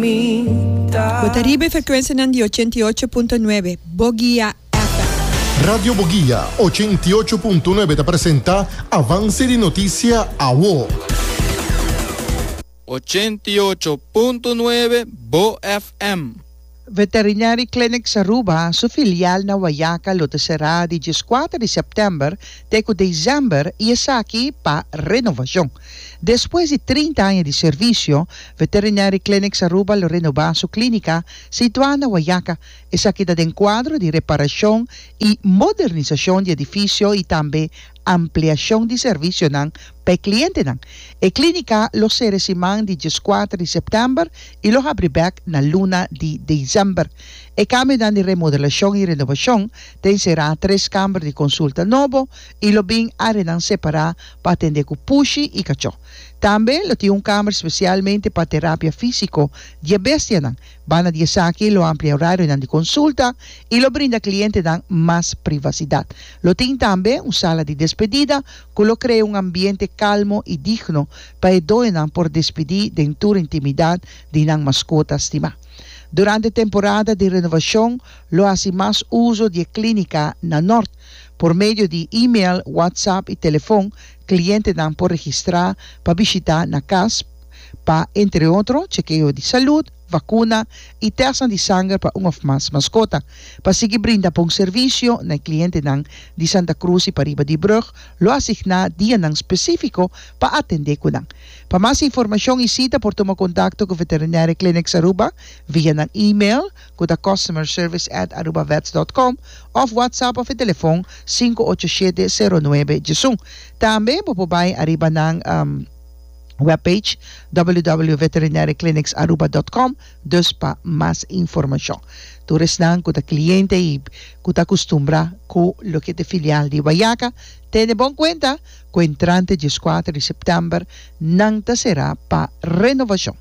Bo ta riba e frekuensianan di ochenta i ocho punto nuebe Bogia FM. Radio Bogia ochenta i ocho punto nuebe ta presenta Avance di Noticia Awo. Ochenta i ocho punto nuebe Bo FM. Veterinary Clinics Aruba su filial na Wayaca lo ta será di dieskuater di sèptèmber te ku desember i esaki pa renovacion. Despues di trinta aña di servisio, Veterinary Clinics Aruba lo renobá su klínika situá na Wayaca. Esaki ta den kuadro di reparashon i modernisashon di edifisio i tambe ampliashon di servisionan pa e klientenan. E klínika lo sere siman di dieskuater di sèptèmber i lo habri bèk na luna di desèmber. E kambionan di remodelashon i renobashon ta enserá tres kamber di konsulta nobo, i lo bin áreanan separá pa atendé ku pushi i kachó. Tambe lo tin un kámer spesialmente pa terapia físiko di e bestianan. Banda di esaki lo amplia e orarionan di konsulta i lo brinda klientenan mas privasidat. Lo tin tambe un sala di despedida ku lo krea un ambiente kalmo i digno pa e doñonan por despidí den tur intimidat di nan maskota stimá. Durante temporada di renovashon lo hasi mas uso di e klínika na nort. Por medio di e-mail, WhatsApp i telefon klientenan por registrá pa bishitá na kas pa, entre otro, chekeo di salud, vakuna i tèstnan di sanger pa un òf mas maskota. Pa sigui brinda bon servisio na e klientenan di Santa Cruz i pariba di Brug, lo asigná dianan spesífiko pa atendé ku nan. Pa mas informashon i sita por tuma kontakto ku Veterinaire Clinics Aruba via nan e-mail, ku ta Customer Service at Arubavets dot com, òf WhatsApp òf e telefòn sinku ocho shete sero nuebe djesun. Tambe bo por bai ariba nan webpage www.veterinariaclinicsaruba dot com dus pa mas informashon. Tur esnan ku ta kliente i ku ta akustumbrá ku loke ta e filial di Guayaca, tene bon kuenta ku entrante dieskuater di sèptèmber nan ta será pa renovashon.